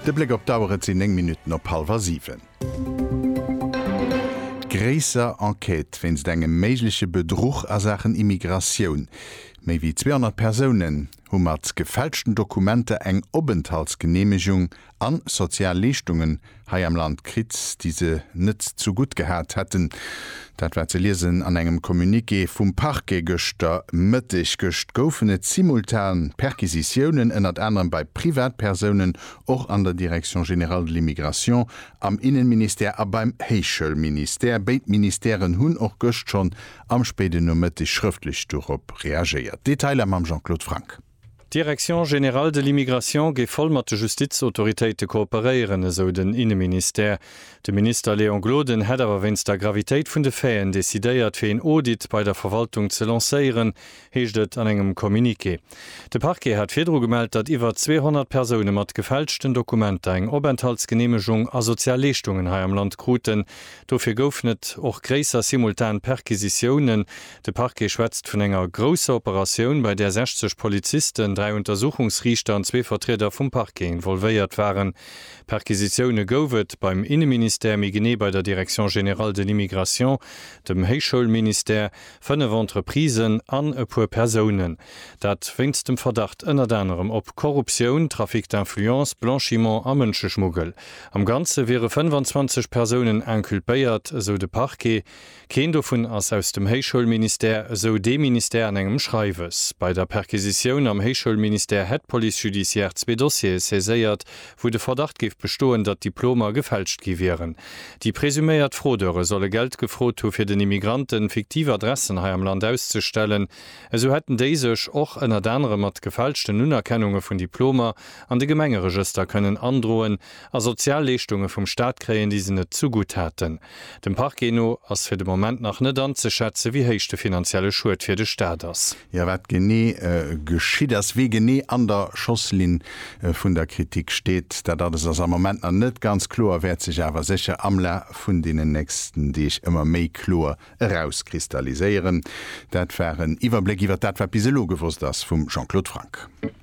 De Bléck op d'Auer, et sinn 9 Minutten op hallef a 7. Gréisser Enquête wéinst engem méigleche Bedruch a Saachen Immigratioun. Méi wéi 200 Persounen hu mat gefälschten Dokumenter eng Openthaltsgeneemegung an sozial Leeschtunge hei am Land kritt, déi se net zu gutt gehat hätten. Dat war ze liesen an engem Communiqué vum Parquet gëschter Mëtteg. Gëscht goufen et simultan Perquisitiounen, ënnert anerem bei Privatpersounen, och an der Direction générale de l'immigration, am Innenministère a beim Héichschoulministère. Béid Ministèren hunn och gëscht schonn am spéiden Nomëtteg schrëftlech dorop reagéiert. Detailer mam Jean-Claude Franck. D'Direction générale de l'immigration géif voll mat de Justizautoritéite kooperéieren, esou den Inneministère. De Minister Léon Gloden hätt awer wéinst der Gravitéit vun de Faiten decidéiert, fir een Audit bei der Verwaltung ze lancéieren, heescht et an engem Communiqué. De Parquet hat virdru gemellt, datt iwwer 200 Persoune mat gefälschten Dokumenter eng Openthaltsgeneemegung a sozial Leeschtungen hei am Land kruten. Dofir goufen et och gréisser simultan Perquisitiounen, De Parquet schwätzt vun enger grousser Operatioun, bei där 60 Polizisten, dräi Untersuchungsriichter an zwee Vertrieder vum Parquet involvéiert waren. Perquisitioune gouf et beim Inneministère, méi genee bei der Direction générale de l'immigration, dem Héichschoulministère, fënnef Entreprisen an e puer Persounen. Dat wéinst dem Verdacht ënnert anerem op Korruptioun, Trafic d'influence, Blanchiment a Mënscheschmuggel. Am Ganze wiere 25 Persounen inculpéiert, esou de Parquet. Keen dovun ass aus dem Héichschoulministère, esou dee Ministère an engem Schreiwes. Bei der Perquisitioun am Héichschoulministère hätt d'Police judiciaire zwee Dossiere saiséiert, wou de Verdacht géif bestoen, datt Diplomer gefälscht gi wieren. Déi presuméiert Fraudeure solle Geld gefrot hu fir den Immigranten fiktiv Adressen hei am Land auszestellen. Esou hätten déi sech och ënnert anerem mat gefälschten Unerkennunge vun Diplomer an de Gemengeregëster kënnen androen, a sozial Leeschtunge vum Staat kréien, déi se net zugutt haten. Dem Parquet no ass fir de Moment nach net anzeschätze wéi héich de finanzielle Schued fir de Staat ass. Jo, wat genee geschitt ass, wie genee an der Schosslinn vun der Kritik steet, dat alles ass am Moment nach net ganz kloer, wäert sech awer sécher am Laf vun deenen nächsten Deeg ëmmer méi kloer erauskristalliséieren. Dat war en Iwwerbléck iwwert dat wat bis elo gewosst ass vum Jean-Claude Franck.